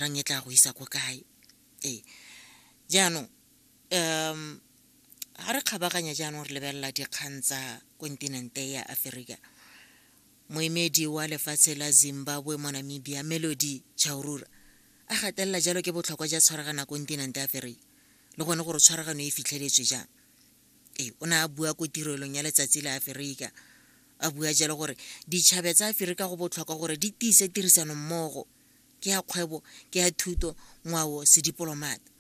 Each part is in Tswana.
rang e tla go isa ko kae ee jaanong um ga re kgabaganya jaanong re lebelela dikgang tsa kontinente ya aferika moemedi wa lefatshe la zimbabwe mo namibia melody chaurura a gatelela jalo ke botlhokwa ja tshwaragana kontinente aferika le gone gore tshwaragano e fitlheletswe jang ee o ne a bua ko tirelong ya letsatsi la aferika a bua jalo gore ditšhabe tsa aferika go botlhokwa gore di tiise tirisano mmogo ke ya kgwebo ke ya thuto ngwao sedipolomata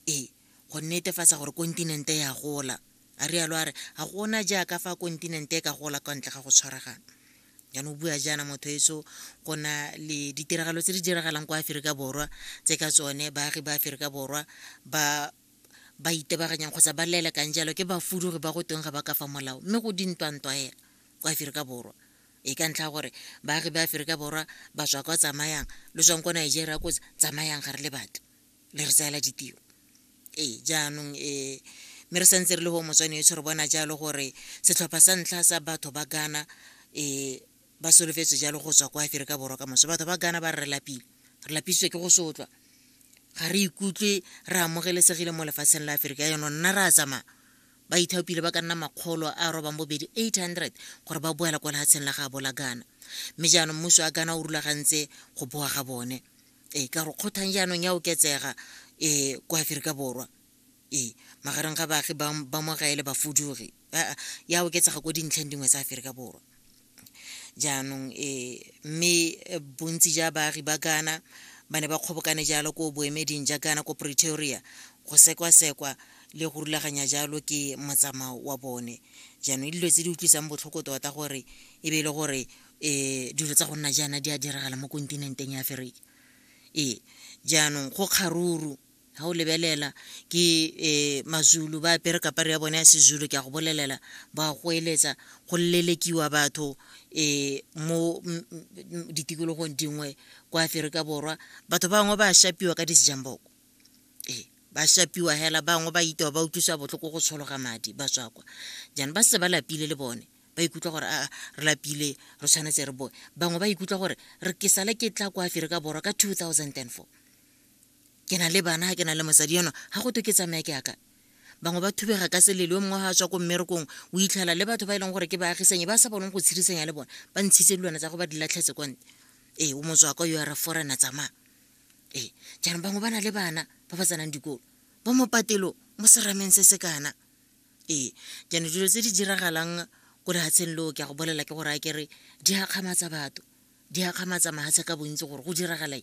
ee go netefatsa gore kontinente ya gola a rialo a re ga gona jaaka fa kontinente e ka gola kwa ntle ga go tshwaragana jaanong o bua jaana motho eso go na le ditiragalo tse di diragalang kwa aferika borwa tse ka tsone baagi ba aferika borwa ba ba itebaganyang kgotsa ba lelekang jalo ke bafudugi ba go teng ga ba ka fa molao mme go dintwantwa hela kwa aferika borwa e ka ntlha gore baagi ba aferika borwa ba tswa kwa tsamayang lo tswang kwa nigeria ko tsamayang ga re le batho le re tsaela ditiro ee jaanong um mme re santse re le go motswane etsho re bona jalo gore setlhopha sa ntlha sa batho ba gana um ba solofetse jalo go tswa kwa aferika borwa ka moso batho ba gana ba re lapile re lapisitswe ke go sotlwa ga re ikutlwe re amogelesegile mo lefatsheng la aferika yano nna re a tsamaya ba ithaopile ba ka nna makgolo a robang bobedi 800 gore ba boela kwa lehatsheng la gaabo la ghana mme jaanong mmuso wa ghana o rulagantse go boa ga bone ee ka gore kgothang jaanong ya oketsega um kwa aferika borwa ee magareng ga baagi ba mogaele bafudugi ya oketsega ko dintlheng dingwe tsa aferika borwa jaanong e mme eh, bontsi ja baagi ba ghana ba ne ba kgobokane jalo ko boemeding ja ghana ko pretoria go sekwasekwa le go rulaganya jalo ke motsamao wa bone jaanong dilo tse di utlwisang botlhoko tota gore e be e le gore um dilo tsa go nna jaana di a diragala mo kontinenteng ya aferika ee jaanong go kgaruru ga o lebelela ke um mazulu ba apere kapare ya bone ya sezulu ke a go bolelela ba go eletsa go lelekiwa batho um mo ditikologong dingwe kwa aferika borwa batho bangwe ba shapiwa ka disejamboko ee ba shapiwa hela bangwe ba itewa ba utlwisa botlhoko go tshologa madi ba tswa kwa jaanong ba se ba lapile le bone ba ikutlwa gore a re lapile re tshwanetse re boe bangwe ba ikutlwa gore re ke sale ke tla kwa aferika borwa ka two thousand and four ke na le bana ga ke na le mosadi yono ga go to ke tsamaya ke yaka bangwe ba thubega ka selele yo mongwe ga a tswa ko mmerekong o itlhela le batho ba e leng gore ke baagisanyi ba sa boneng go tshirisanya le bone ba ntshitse dilwana tsa go ba di latlhetse konte ee o motswaka yo a re forena tsamaya ee jaanong bangwe ba na le bana ba ba tsenang dikolo bo mopatelo mo serameng se se kana ee jaanong dilo tse di diragalang ko lehatsheng leo ke ya go bolela ke gore a kere di akgamatsa batho di akgamatsa mahatshe ka bontsi gore go diragalae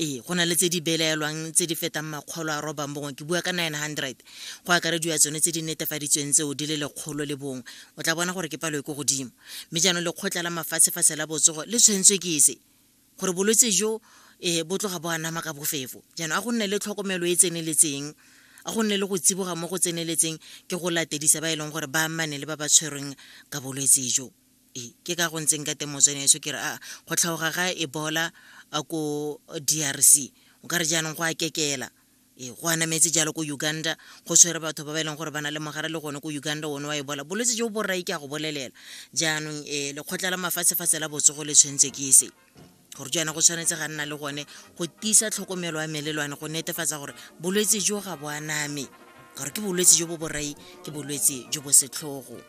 ee go na le tse di belaelwang tse di fetang makgolo a robang bongwe ke bua ka 900 go akarediwa tsone tse di netefaditsweng tseo di le lekgolo le bongwe o tla bona gore ke palo e ko godimo mme jaanong lekgotla la mafatshefatshe la botsogo le tshwentswe ke se gore bolwetse jo um bo tloga bo anama ka bofefo jaanong a go nne le tlhokomelo e tseneletseng a go nne le go tsiboga mo go tseneletseng ke go latedisa ba e leng gore ba amane le ba ba tshwerweng ka bolwetse jo ke ka go ntseng ka teng motswene eso ke re a go tlhaoga ga ebola ko drc o ka re jaanong go a kekela ee go anametse jalo ko uganda go tshwere batho ba ba e leng gore ba na le mogare le gone ko uganda one wa ebola bolwetse jo bo rrai ke a go bolelela jaanong um lekgotla la mafatshefatshe la botsogo le tshwanetse ke se gore jaana go tshwanetse ga nna le gone go tiisa tlhokomelo ya melelwane go netefatsa gore bolwetse jo ga bo aname gore ke bolwetse jo bo borai ke bolwetse jo bo setlhogo